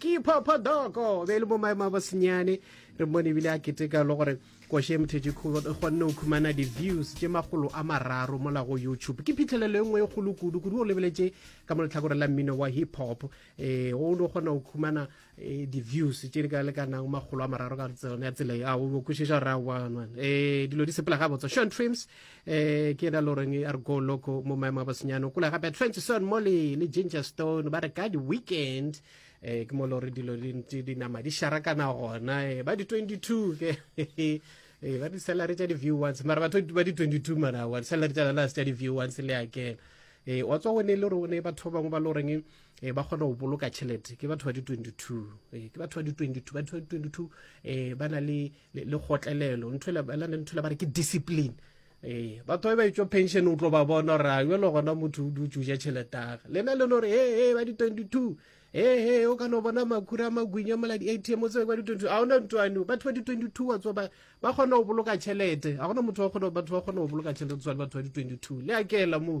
ke phapha doko be e le mo maemo a bosenyane re mmone ebile a keteka le gore koše mthedi kgolo e kgonne go khumana di-views tše makgolo a mararo mola go youtube ke phitlhelelo e nngwe e kgolo kudu kudu o lebeletše ka mo letlhakore la mmino wa hip hop um o ne o kgona go khumana eh, di-views tše di ka lekanang makgolo a mararo ka tsone ya tsela a o kwešiša gore a um dilo di sepela ga botsa sean trims eh ke ena loreng e re go loco mo maemo a bosenyane o kula gape transon molly le ginger stone ba re ka di-weekend eh ke mo lore dilo di ntse di nama di sharakana gona eh ba di-22 ke eh ba di-salary tša di-view ones mara batho ba di-22 mara wa di-salary tša lana tša di-view ones le akena eh wa tswa o ne le rone batho ba bangwe ba loreng e eh, ba kgona go boloka tšhelete ke batho ba di-22 eh ke batho ba di-22 batho ba di-22 eh ba na le le, le kgotlelelo ntho le ntho le ba re ke discipline ee batho ba ba etswa pension o tlo ba bona gore a jalo gona motho o dutse o ja tšheletaga lena le no re ee ee ba di-twenty two ee ee o ka no bona makhura a magwinya mola di-atm o tsebe kwa di-twenty ga ona ntwane batho ba di-twenty two wa tsoba ba kgona go boloka tšhelete ga gona motho batho ba kgona go boloka tšhelete tswane batho ba di-twenty two le a keela moo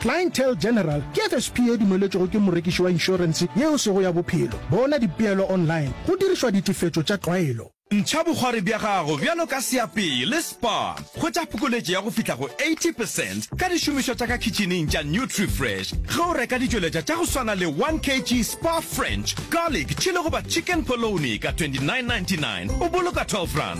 Clientele General ke FSP e dumeletšwego ke morekiši wa inšorense yeo e sego ya bophelo. Bona dipeelo online go dirišwa ditefetšo tša tlwaelo. Ntšha bogwari bja gago bjalo ka seapei le spa. Hwetša phokoletšo ya go fihla go 80 percent ka dišomišwa tša ka khitšhineng tša Nutrifresh ge o reka ditšweletša tša go swana le 1 kg spa French, garlic, chilli goba chicken polony ka 29.99 o boloka 12 rand.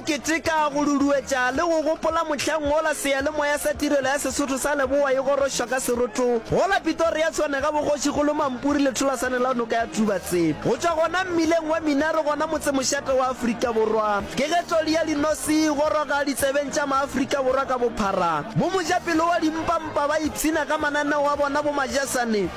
Keteka, go duduetša le go gopola mohlang wola Seyalemoya sa Tirelo ya Sesotho sa Leboa e gorošwa ka seroto wola Pitoria Tshwane ga bogoši go lo Mampuri letholasane la noka ya Tubatse. Go tšwa gona mmileng wa Minaro gona motsemošate wa Afrika Borwa ke ge tloli ya linosi e goroga ditsebeng tša Maafrika Borwa ka bophara. Bo mojapelo wa dimpa mpa ba ipshina ka mananeo a bona bo majasane.